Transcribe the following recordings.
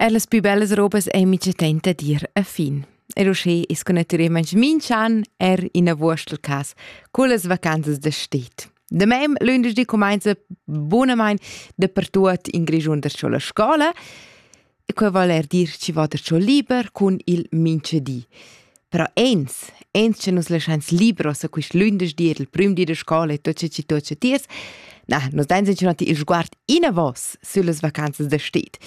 Er las pü bellas robas ei mica tenta dir a fin. Er uschè es con natüralmaing minch'an er in a Wurstel cas cullas vacanzas da stet. Da mem lündeschdi cumainza bunamain dapertuot in Grischun da sco la scola e quai vol er dir chi va da sco liber cun il minchedi. Però ins, ins che nus laschains libros a quist lündeschdi el prüm di da scola e tot ce chi tot ce tiers, na, nus dains incunati il sguard inavos süllas vacanzas da sted.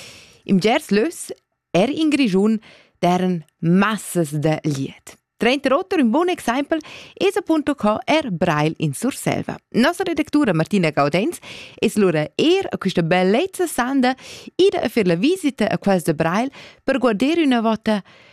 Im Gers lös, er in Grischun, deren massas da liet. Trenta rotter un bun exempel es appunto co er Brail in Surselva. Nossa redactura Martina Gaudenz es lura er a questa bellezza sanda ida a fer la visita a quels de Brail per guarder una vota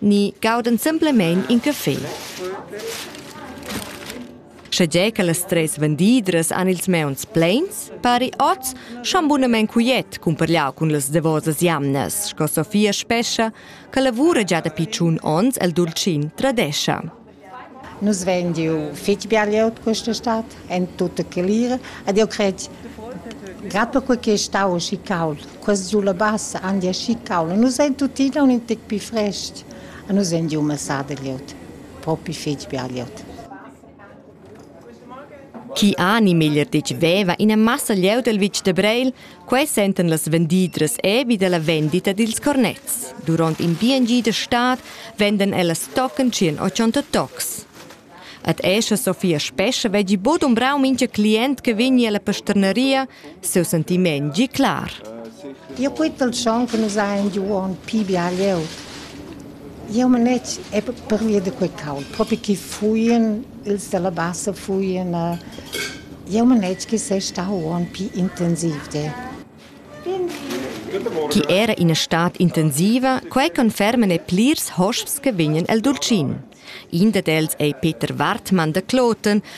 ni gaudan simplamein in café. Schegie che las treis vendidras han ils meuns pleins, pari oz schon bunamein quiet cumparliau cun las davosas jamnas, sco Sofia Spescha che lavura gia dapi tschun onns el Dulcin Tradescha. Nus vein giu fetg bia glieud questa stad en tutta Calira ed jeu cret Grad perquei che ei stau aschi cauld, quest giu la bassa han gia aschi cauld e nus ein tuttina un tec pli frestg e nus ein giu massà da glieud, propi fetg bia glieud. Chi ani meglier detg veva ina massa glieud el vitg da Breil, Quei sentan las vendidras ebi dalla vendita dils cornets. Duront in BNG da stad vendan ellas tochen tschien 80 tocs. Ad escha Sofia Spescha veggi bod umbrau mincha client che vegni alla pasternaria, seu sentiment gi clar. Eu poet pel chon che nus hain giu on pi bial eu. Jeu manet pervia da quei caul, propi che fuien ils dalla bassa fuien. Jeu manet che sei stau uonn pli intensiv de. Chi era ina stad intensiva, quei conferman e plirs hosps che vegnan el Dulcin. In dad els ei Peter Wartmann da Kloten,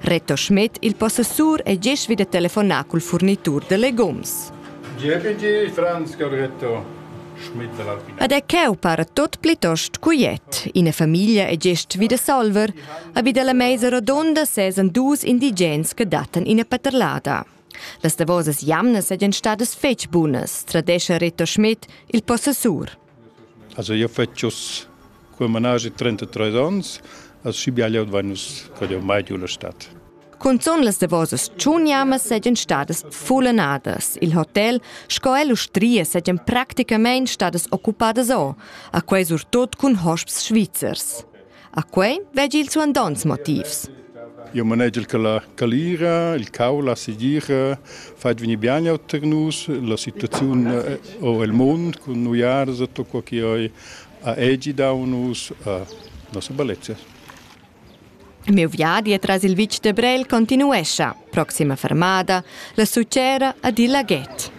Reto Schmidt, il possessur, è gest vid da telefonar cul furnitur da legums. GPG Franzka Reto Schmidt Ad è cheu para tot plitost cuiet. Ina famiglia è gest vida Salver, a vida la meisa rodonda sesan dus indigens che datan ina paterlada. Las davosas jamnas sajan stadas fetg bunas, tradescha Reto Schmidt, il possessur. Also io fetsch uss cul managi 33 ons, as schi bial eu dvain uss cad eu mai giù la stad. Cunzun las davosas tschuniamas seigien stadas fullenadas. Il hotel sco e l'ustria seigien practicamein stadas occupadas o, a quei surtut cun hosps svizzers. A quei veggi il suandonts motivs. Io manegel che la calira, il cau, la segira fai venir bene auter nus, la situazione eh, o il mondo con noi arsa, tutto che io a egi da nus, a nostra bellezza. Il meu viadi tras il vitg de Brel continuescia, proxima fermada, la succera ad il laghet.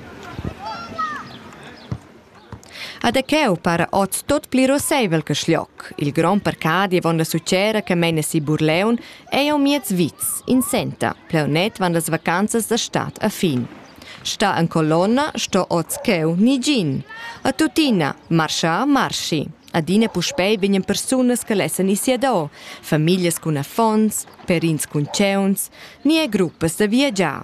Ad aqueu para oz tot pli rosseivel che Schlioc. Il grond parcadi avon la sucera che meina si Burleun ei au miez vits, in senta, pleunet van las vacanzas da stad a fin. Sta en colonna sto oz cheu nigin. A tuttina, marscha, marschi. Adina puspei vegnan persunas che lessen ir sia do, famiglias cun affons, perins cun tgeuns, ni e gruppas da viagiar.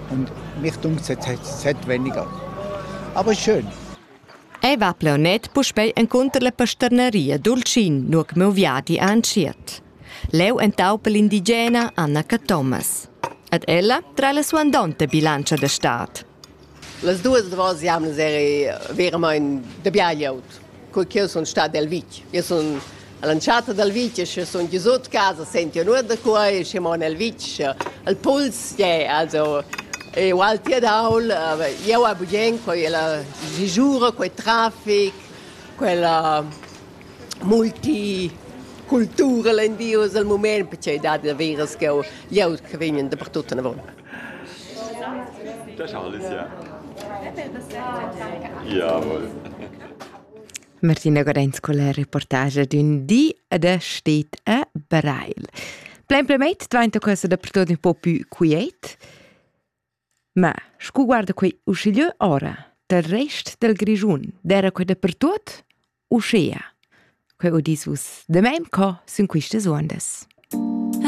Und mich dunkt es weniger. Aber schön. Ei va plaunet puspei encunter la pasterneria Dulcin, nur che meu viadi ha entschiet. Leu entaupa l'indigena Anna Cathomas. Ed ella tra la suandonta bilancia de stad. Las duas davos jamnas eri veramente de biagliaut. co ch'io sun stat al vitg. Io sun all'entschatta dal vitg e sche sun giusut casa sentio nuot da qua e sche mon al vitg. Il puls è also è ault ed aul. Jeu a bugen quella sisura, quei trafic, quella multicultura len dius al mument, perché dat daveras ch'jeu jeu che vegn dapertut anavon. Da Charles, ja. Jawohl. Martina Gorenz con la reportage d'ün di ed è stet a Breil. Plain plemeit dvainta questa dappertut un po più quiet, ma scu guarda quei uschigliö ora, del rest del Grischun, d'era quei dappertut uschea. Quei udis vus de mem co sun quistas uondas.